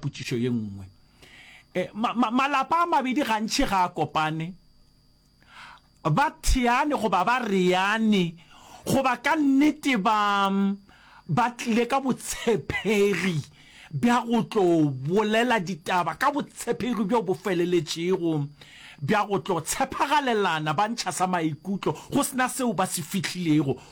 Potšišo ye nngwe, e, ma, ma, malapa a mabedi gantši ga a kopane, ba theane goba ba reane, goba ka nnete ba, ba tlile ka botshepegi bja go tlo bolela ditaba ka botshepegi bjo bo feleletšego bja go tlo tshepagalelana, ba ntšha sa maikutlo go sena seo ba se fihlilego,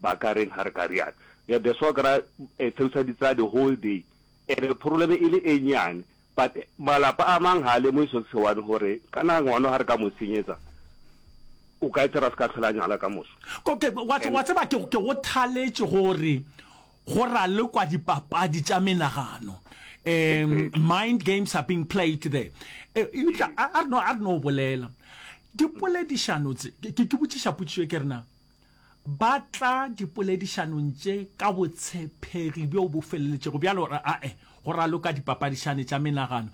Ba ka reng ha re ka rialo? Re be swa kry-a a theosa ditsela the whole day e be problem e le e nnyane. But malapa a mang ha a lemohe so se one gore kana ngwana ha re ka mo senyetsa o ka etsa re se ka tlhola nyala ka moso. Okay, wa tseba wa tseba ke ke go thaletše gore go ralekwa dipapadi tša menagano. Um, mind games are being played there. Eh, eupša a a re no a re no bolela dipoledišano tse ke ke botšiša potšišo e ke re na Ba tla dipoledišanong tše ka botshepegi bjo bo feleletšego bjale gore a-e go raloka dipapadišane tša menagano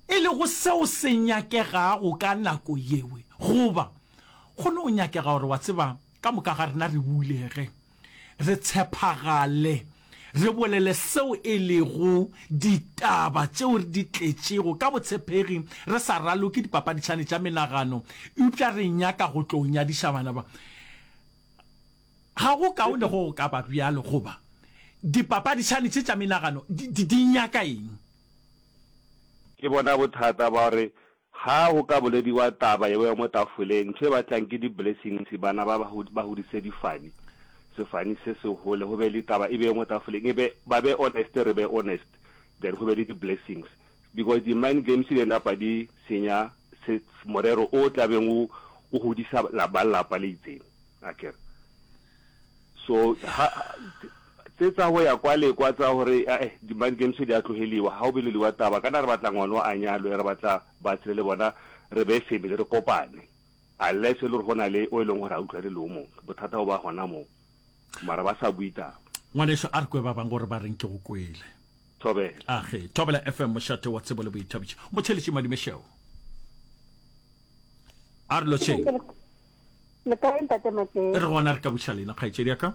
e lego seo se nyakegago ka nako yeo. Goba go no nyakega gore, wa tseba, ka moka ga rena re bulege, re tshepagale. Re bolele seo e lego ditaba tšeo re di tletšego ka botshepegi, re sa raloke dipapaditšhane tša menagano, eupša re nyaka go tlo nyadiša bana ba. Ga go kaone go go ka ba bjalo, goba dipapaditšhane tše tša menagano di, di, di nyaka eng? Ke bona bothata ba gore Ga go ka bolediwa taba yeo ya mo tafoleng, ntho e batlang ke di blessings, bana ba ba hudise difani, sefani se se hole, go be le taba e be mo tafoleng, e be ba be honest, re be honest, then go be le di blessings, because di mind games di napa di senya se morero o tla beng o godisa ba lapa le itseng, akere. So ha. Tse tsa go ya kwa le kwa tsa gore ae di-mind games di a tlogeliwa, ga go boleliwa taba kana re batla ngwano a nyalwe, re batla ba tshele le bona re be family re kopane. Unless e le gore go na le o e leng gore ga utlwane le o mongwe, bothata bo ba gona moo. Mara ba sa bue taba. Ngwaneso, a re kwe ba bangwe gore ba reng ke go kwele. Thobela. Age, Thobela FM mošate wa tsebo le boithabišo. Motšheletši Madimešeo. A re lotšheng. Le kae ntate Matleng? E re gona re ka buša lena kgaetšedi ya ka.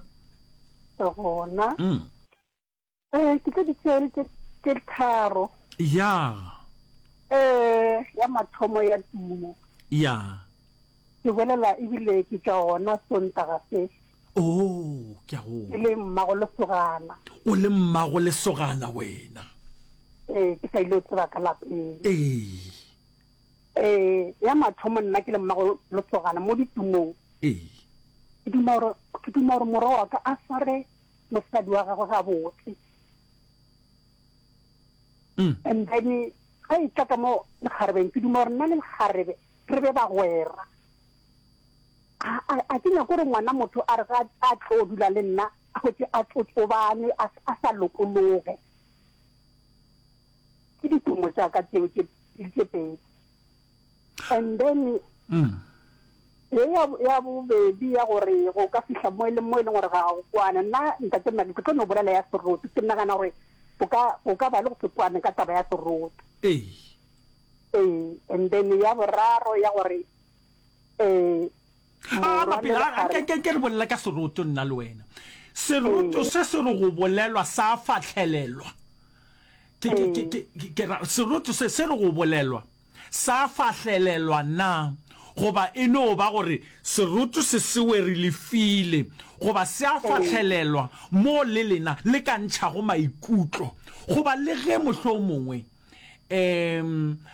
Re gona. Mm. Eh ke tse ditsele tse tse tharo. Ya. Eh ya mathomo ya tumo. Ya. Ke bolela ebile ke tša ona sontaga se. Oh, ke a go. Le mmago le sogana. O le mmago le sogana wena. Eh ke sa ile tseba ka lapeng. Eh. Ee, ya mathomo nna ke le mmago Losogana mo ditumong. Ee. Ke duma gore ke duma gore morwa wa ka a sware mosadi wa gagwe gabotse. Mm. And then ga e tla ka mo lekgarebeng ke duma gore nna le lekgarebe re be bagwera. A ke nyako gore ngwana motho a re ga a tlo dula le nna a gotse a tsotsobane a sa lokologe. ke ditumo tša ka tšeo tše tše pedi and then mm. ye ya bobedi ya gore go ka fihla mo e leng mo e leng gore ga go kwana nna ntate mna ke tlo no bolela ya seroto ke nagana gore o ka ba le go se kwane ka taba ya seroto ee and then ya boraro ya gore a bapela a ke ke ke re bolela ka seroto nna le wena seroto se se re go bolelwa sa fatlhelelwa ke ke ke ke ke ra seroto se se re go bolelwa sa fatlhelelwa na goba e no ba gore seroto se sewe re lefile goba se a fatlhelelwa mo le lena le ka ntšhago maikutlo goba le ge mohlo mongwe Ee,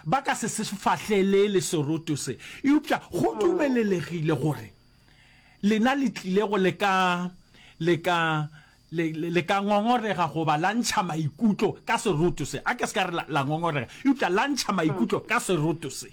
ba ka se se fahlelele seroto se. Eupša go dumelelehile gore lena le tlilego le ka, le ka, le, le ka ngongorega goba la ntšha maikutlo ka seroto se. A ke se ka re la, la ngongorega, eupša la ntšha maikutlo ka seroto se.